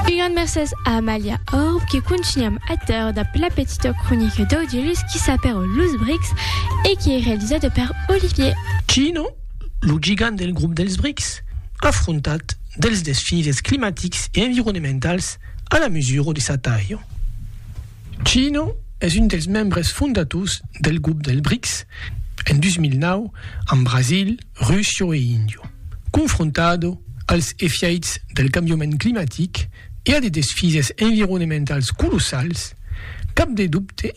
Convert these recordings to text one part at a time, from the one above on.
Un grand mercés a Amalia Orb que contunham ateur dab la petita cronica d'Audilus qui s'apèra Los Brics e qui ei realizada per Olivier. Chino, lo gigant del grop dels Brics, afrontat dels desfises climatics e environementals a la mesura de sa talha. China es un dels membres fondators del grop del BRICS en 2009 amb Brasil, Russia e India. Confrontada als efièits del cambiament climatic e a de desfises environementals colossals, cap de dobte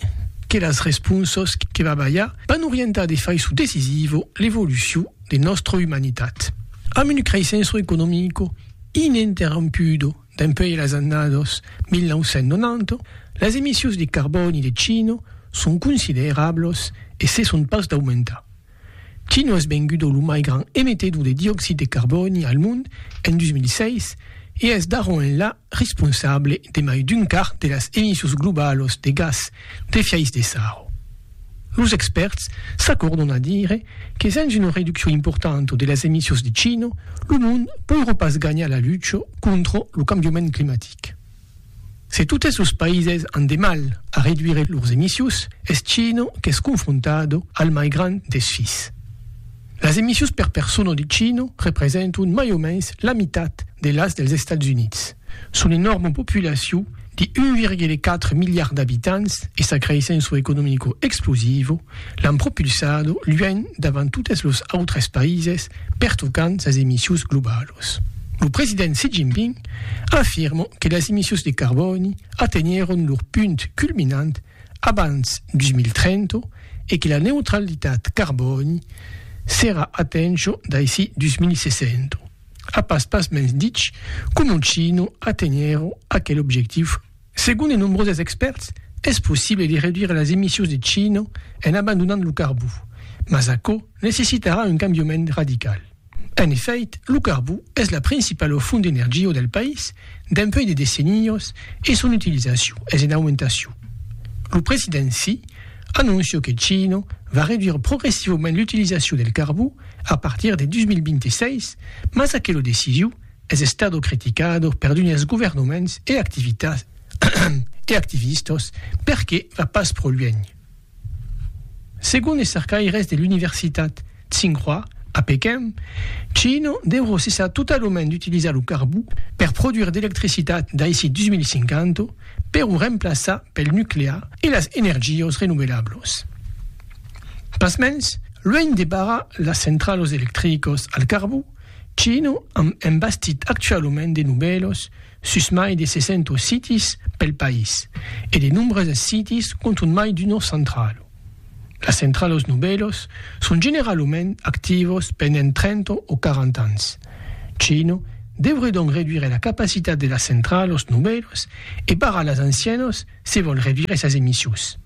que las responsas que va balhar van orientar de faiçon decisiva l'evolucion de nòstra umanitat. Amb una creissença economica ininterrompuda Dempuèi las annadas 1990, las emissius de carbòni de China son considerablas e cesson pas d'aumentar. China es venguda lo mai grand emetedor de dioxid de carbòni al mond en 2006 e es d'ara enlà responsable de mai d'un quart de las emissius globalas de gas d'efièch de sarro. Los expèrts s'acòrdon a dire que sens una reduccion importanta de las emissions de cino, lo mond poirà pas ganhar la lucha contra lo cambiament climatic. Se totes los païses an de mal a reduire lors emissions, es China qu'es confrontada al mai grand desfís. Las emissions per persona de China representan mai o mens la mitat de las dels Estats Units. Son enòrma populacion de 1,4 miliard d'abitants e sa creissença economico explosiva l'an propulsada luènh davant totes los autres païses pertocant sas emissions globalas. Lo president Xi Jinping afirma que las emissions de carbòni atenhèron lor punt culminant abans 2030 e que la neutralitat carbòni serà atencha d'aicí 2060. A pas pas mens dich coma Chino aténher aquel objectiu. Segon de nombroses expèrts, es possible de reduire las emissions de Chino en abandonant lo carbó, mas aquò necessitarà un cambiament radical. En efèit, lo carbó es la principala font d'energia del país dempuèi de decennias e son utilizacion es en aumentacion. Lo president Xi anonciò que Chino va reduire progressivament l'utilizacion del carbó a partir de 2026, mas aquelo decisiu es estado criticado per d'unes governaments e activitats e activistas perque va pas pro luènh. Segon es cercaires de l'universitat Tsinghua a Pequin, China deurà cessar totalament d'utilizar lo carbó per produire d'electricitat daicí 2050 per o remplaçar pel nuclear e las energias renovelables. Pasmens, luènh de barrar las centralos electricos al carbon, Chino a embastit actualument de nubèlos sus mai de 600 sitis pel país e de nombreuses sitis contunh mai d'uno centralo. Las centralos nubèlos son generalument activos pendent 30 o 40 ans. Chino deuré donc reduire la capacitat de las centralos nubèlos e barrar las ancianos se vòl revire sas emissions.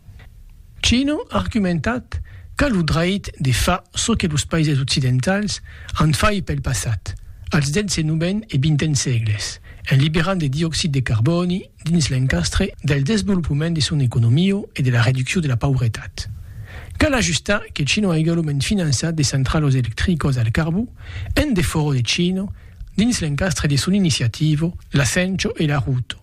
Chino a argumentat qu'a lo dreit de far çò que los païses occidentals an fait pel passat, als xix-ven e xxen sègles, en liberant de dioxid de carbòni dins l'encastre del desvolopament de son economio e de la reduccion de la pauretat. Cal ajustar que Chino a egalument finançat de centralos electricos al carbó en defòro de Chino dins l'encastre de son iniciativo, l'Acencho e l'Aruto.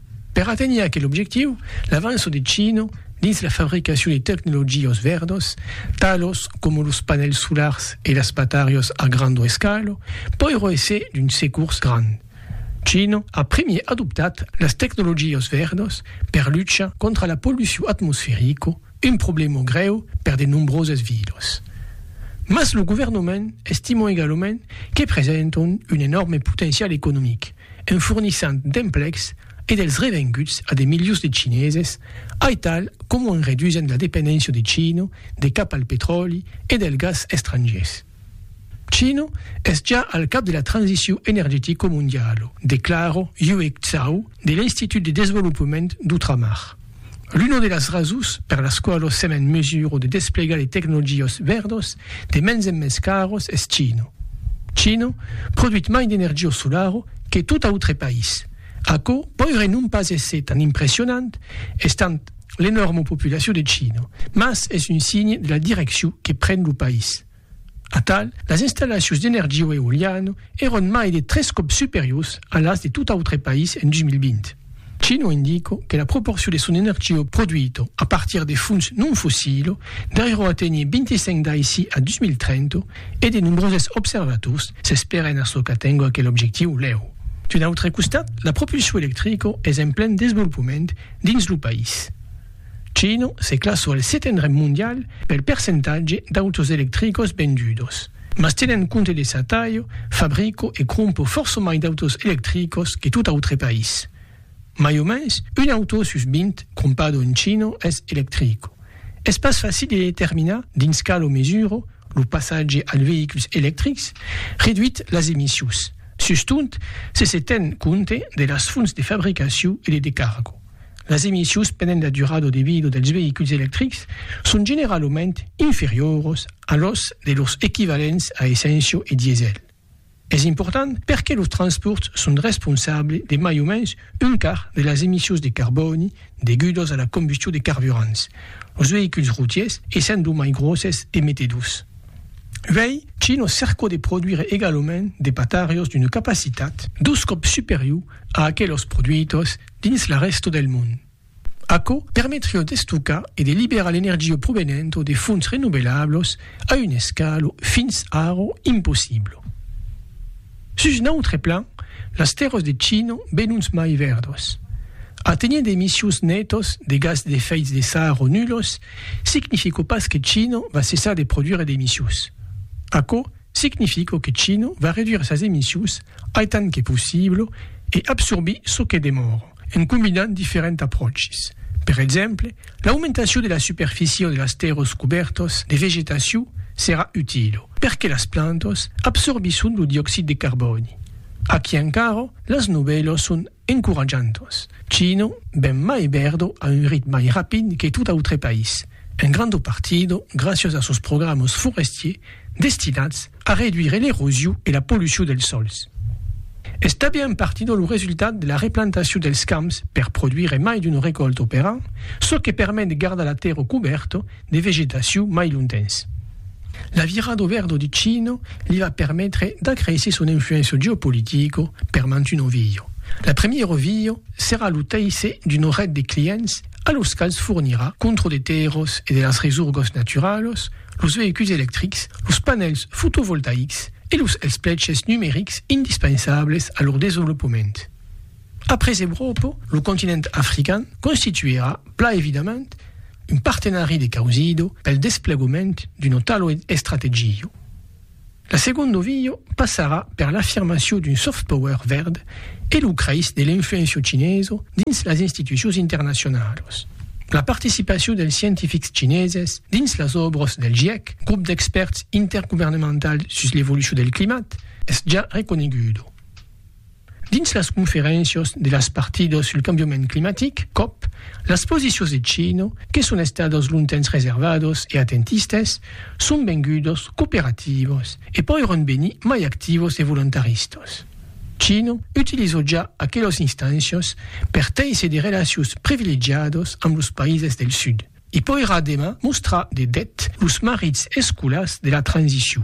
Per aténher aquel objectiu, l'avanço de Chino dins la fabricacion de tecnologias vèrdas, talos coma los panèls solars e las batarias a granda escala, pòirò èsser d'un securs grand. Chino a primièr adoptat las tecnologias vèrdas per luchar contra la pollucion atmosferica, un problèma grèu per de nombrosas vilas. Mas lo governament estima egalament que presentan un enòrme potencial economic. en fornissant d'emplecs e dels revenguts a de milions de chineses, aital coma en redusent la dependéncia de China de cap al petròli e del gas estrangiers. China es ja al cap de la transiciu energetica mondiala, declara Yue Zhao de l'Institut de Desvolopament d'Outramar. L'una de las rasons per las qualos sèm en mesura de desplegar de tecnologias vèrdas de mens en mens caras es China. China produit mai d'energia solara que tot autre país. Aquò poiré non pas èsser tan impressionant, estant l'enòrma populacion de China, mas es un signe de la direccion que pren lo país. Atal, las installacions d'energiu eoliano èron mai de tres còps superiors a las de tot autre país en 2020. China indica que la proporcion de son energiu produito a partir de fons non fossilo deuriá aténher 25 daicí a 2030 e de nombroses observators s'espèren a çò qu'atenga aquel objectiu lèu. D'un autre costat, la propulsion electrica es en plen desvolopament dins lo país. Chino se classò al setendre mondial pel percentatge d'autos electricos vendudos. Mas tenent compte de sa talha, fabrico e crompo fòrça mai d'autos electricos que tot autre país. Mai o mens un auto sus 20 crompado en Chino es electrico. Es pas facil de determinar dins calo mesura lo passatge als veïculs electrics reduit las emissions, sustot se se ten compte de las fonts de fabricacion e de decargo. Las emissions pendent la durada de vida dels veïculs electrics son generalament inferioras a los de lors equivalents a essència e diesèl. Es important perque los transpòrts son responsables de mai o mens un quart de las emissions de carbòni degudas a la combustion de carburants, los veïculs routiers essent los mai gròsses emetedors. Uèi, Chino cerca de produire egalament de patarios d'una capacitat dos còps superior a aquelas produitas dins la rèsta del mond. Aquò permetriá d'estocar e de liberar l'energia provenenta de fonts renovelablas a una escala fins ara impossibla. Sus un autre plan, las tèrras de China benons mai verdas. Aténher d'emissions nètas de gas d'efèits de sara nulas significa pas que China va cessar de produire d'emissions. Aquò significa que China va reduire sas emissions aitant que possible e absorbir çò que demòra, en combinant diferents apròches. Per exemple, l'aumentacion de la superficie de las tèrras cobèrtas de vegetacion serà utila, perque las plantas absorbisson lo dioxid de carbòni. Aquí encara, las novèlas son Encoratjant-os, Chino, ben mai Berdo a un rit mai rapid que tot autre país, un grando partido graciós a sos programas forestiers destinats a reduire l'erosiu e la polluciu dels sòls. Es tabé un partido lo resultat de la replantaciu dels camps per produire mai d'una recòlta per an, çò que permet de gardar la tèrra cubèrta de vegetacion mai lontens. La vira do verdo de Chino li va permetre d'acréisser son influéncia geopolitica per mantun ovilho. La premiera ovilha serà lo teisse d'una ret de clients a los quals fornirà, contra de tèrras e de las resorgas naturalas, los veïculs electrics, los panèls fotovoltaics e los espleches numerics indispensables a lor desvolopament. Après Euròpa, lo continent african constituerà plan evidament un partenari de causido pel desplegoment d'un otalo estrategio. La segondo vio passarà per l'afirmacion d'un soft power verd e lo creis de l'influenciu chineso dins las institucions internacionalos. La participacion dels scientifics chineses dins las òbras del GIEC, Grup d'expèrts intergovernemental sus l'evolucion del climat, es ja reconeguda. Dins las conferéncias de las partidas sul cambiament climatic, cop, las posicions de Chino, que son estadas longtemps reservadas e atentistes, son vengudas cooperativas e pòiron venir mai activas e volontaristas. Chino utiliza ja aquelas instàncias per téisser de relacions privilegiadas amb los païses del Sud. I pòirà demà mostrar de deth los marits escolars de la transicion.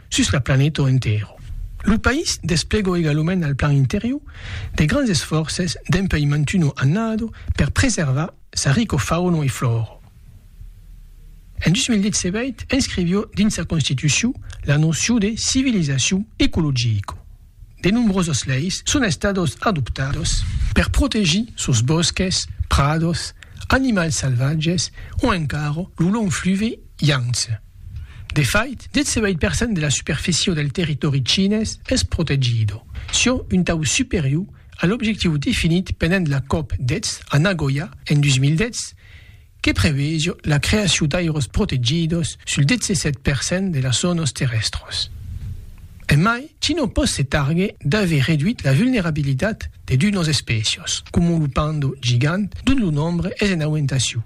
sus la planeta entero. Lo país desplegó egalument al plan interior de grands esfòrces dempuèi mantuno annado per preservar sa rico fauno e flòro. En 2010 se veit inscrivió dins sa constitucion la nocion de civilizacion ecologico. De nombroses leis son estados adoptados per protegir sos bòsques, prados, animals salvatges o encara lo long fluve Yangtze. De fait, 18 per cent de la superficie del territòri chinés es protegido, çò un tau superior a l'objectiu definit pendent la cop 10 a Nagoya en 2010 que preveijo la creacion d'airòs protegidos sul 17 per cent de las zònas terrèstras. Emai, China pòt se targuer d'aver reduit la vulnerabilitat de d'unas espècias, coma lo panda gigant, dont lo nombre es en aumentacion.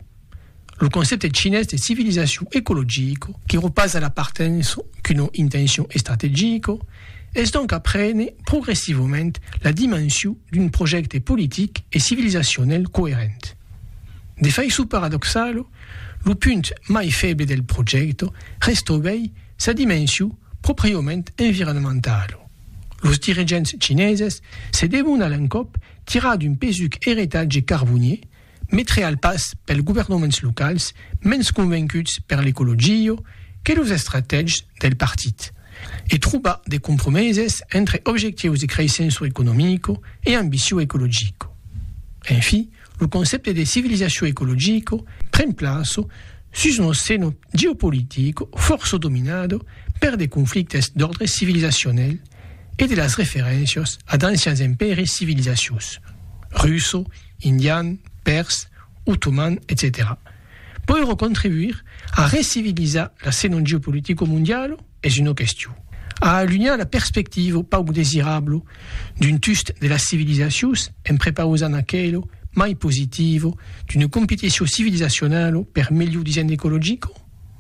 Lo concèpte chinés de civilizacion ecologica, que repasa la partença qu'una intencion estrategica, es donc a prene progressivament la dimension d'un projècte politic e civilizacionèl coerent. De faiço paradoxalo, lo punt mai feble del projècto restoguèi sa dimensiu propriaument environmentalo. Los dirigents chineses se devon a l'encòp tirar d'un pesuc eretatge carbonier, mai treal pas pels governaments locals mens convencuts per l'ecologia que los estratègs del partit e trobar de compromeses entre objectius de creissenço economico e ambiciu ecologico. En fi, lo concèpte de civilizacion ecologico pren plaço sus un osceno geopolitico fòrça dominado per de conflictes d'òrdre civilizacionel e de las referéncias a d'ancians empèris civilizacius, russo, indian, pèrs, otoman, etcetèra. Pòiro contribuir a recivilizar l'ascenant geopolitico mondialo es una question, a alunhar la perspectiva pauc desirabla d'un tust de las civilizacions en prepausant aquela mai positiva d'una competició civilizacionala per melhor disènh ecologica?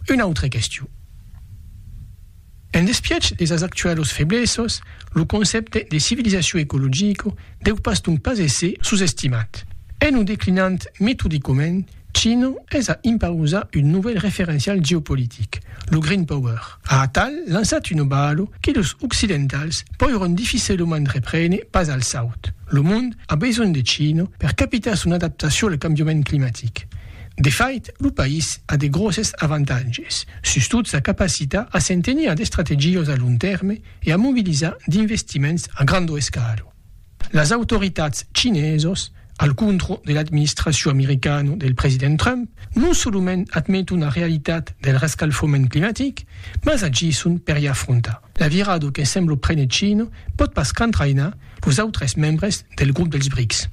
Una autra question. En despiech de sas actualos feblesas, lo concèpte de civilizacion ecologica deu pas donc pas èsser sosestimat. En o declinant metodicament, China es a impausar un novèl referencial geopolitic, lo Green Power. A atal lançat una bala que los occidentals poiràn dificelament reprene pas al saut. Lo mond a besonh de China per capitar son adaptacion al cambiament climatic. De fait, lo país a de gròsses avantatges, sustot sa capacitat a se'n tenir d'estrategiós a long tèrme e a mobilizar d'investiments a grando escalo. Las autoritats chinesos, al contrò de l'administracion americana del president Trump, non solament admeton la realitat del rescalfament climatic, mas agisson per i afrontar. La virada que sembla prene China pòt pas qu'entrainar los autres membres del grop dels BRICS.